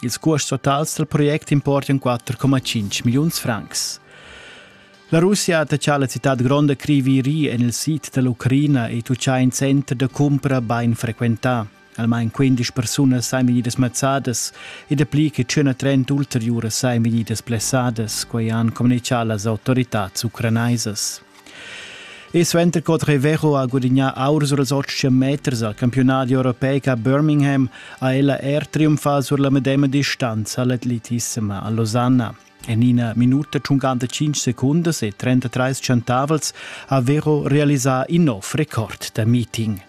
Ils cuosts totals dal project importan 4,5 milliuns francs. La Russia ha taxà la citad gronda Criviri en il sid da l'Ucraina e tuccà in center da cumpra bain frequentà. Almain 15 persunas sain vegnidas mazzadas e dapli che 130 ulteriuras sain vegnidas blessadas, quai han communichà las autoritads ucranaisas. E suenter co Trevejo ha gudignà aur sur ils otg meters al campiunadi europeic a Birmingham ha ella er triumfà sur la medema distanza all'atletissima a Losanna. En ina minuta 55 secundas e 33 centavels ha Vero realisà in nov record da meeting.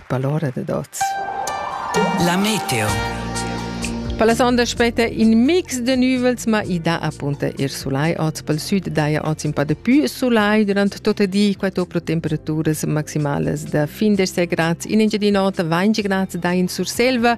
Palora dad oz. La meteo. Per la sonda spetta in mix de nüvels, ma i dà appunta ir sulai oz. Pel sud daja oz in pa de più sulai durant tot il di, quattro pro temperaturas maximalas da fin des gradi. In Engiadin'Ota 20 gradi daja in Surselva